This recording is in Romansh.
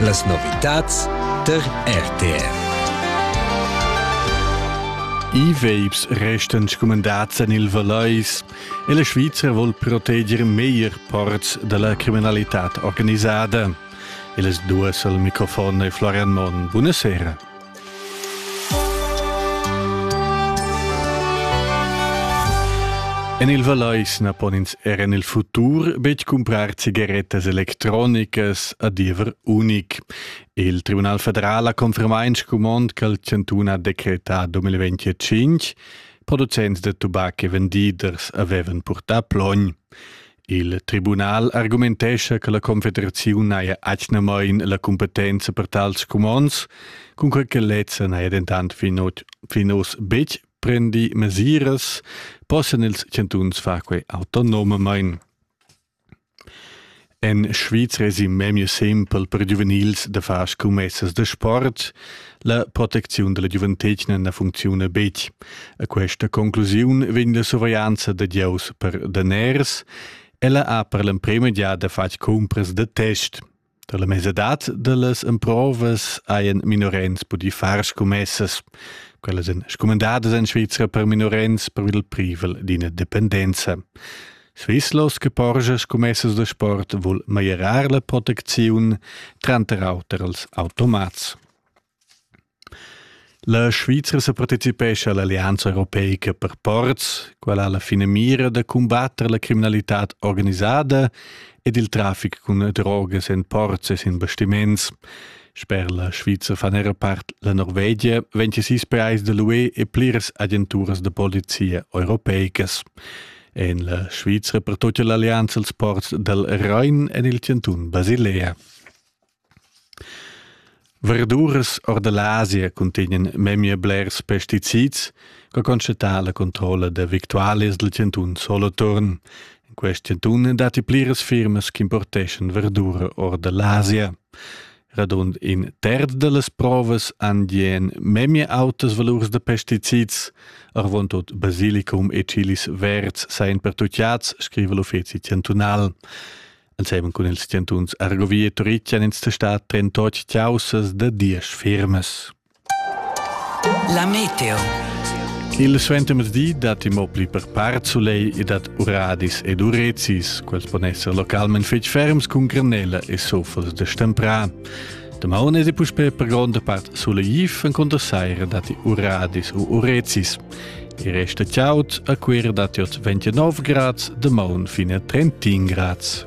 Las novitads der RTR. I veips restan scumandats en il Valais e la Svizra vuol proteger meglier parts da la criminalità organisada. E las duas al microfon è Florian Monn. Buonasera. En il Vallais na pon ins er en il futur betg cumprar cigarettas electronicas a diever unic. Il Tribunal federal ha confermà in scumond ch'al chantun ha decretà 2025. Producents da tubac e vendiders avevan purtà plogn. Il tribunal argumentescha che la Confederaziun haja atgnamain la cumpetenza per tals cumonds, cunquai che lezza n'haja dentant fin, fin oz betg prendi mesiras, possan ils chantuns far quai autonomamain. En Svizra èsi memia simpel per giuvenils da far scummessas da sport, La protecziun dalla giuventetgna na funcziuna betg. A questa conclusiun vegn la surveglianza da Dieus per daners. Ella ha per l'emprema giada fatg cumpras da test. Da la mesadad da las emprovas hajan minorenns pudì far scommessas. Quellas èn scumendadas en Svizra per minorenns per il privel d'ina dependenza. Svizlos che porscha scummessas da sport vul meglierar la protecziun tranter auter als automats. La Svizra sa partecipescha all'Allianza europeica per ports, quella ha la finamira da combatter la criminalità organisada ed il traffic cun drogas en ports e sin bastiments. Sper la Svizra fan era part la Norvegia 26 pais da l'UE e pliras agenturas da polizia europeicas. en la Svizra per tut l'allianza als ports dal Rhein en il chantun Basilea. Verduras or da l'Asia cuntegnan memia blers pesticids che constatà la controlla da victualias del chantun Soloturn. In quest chantun datti pliras firmas che importeschan verdura or da l'Asia. Radund in terz dallas provas han dien memia autas valurs da pesticids, arvontot basilicum e chilis verds sajan pertutgads, scriva l'uffeci chantunal. Ensemen cun ils chantuns Argovia e Turitg han ins testat trentotg caussas da diesch firmas. La meteo. Il suentermezdi dat mo pli per part soleil e dat uradis ed urezis. Quels pon esser localment fetg ferms cun granella e sofels de stemprà. Damaun è puspè per gronda part soleiv, en contra saira datti uradis u urezis. Il resto chaud a Cuira datti oz 29 grads, damaun fine a 31 grads.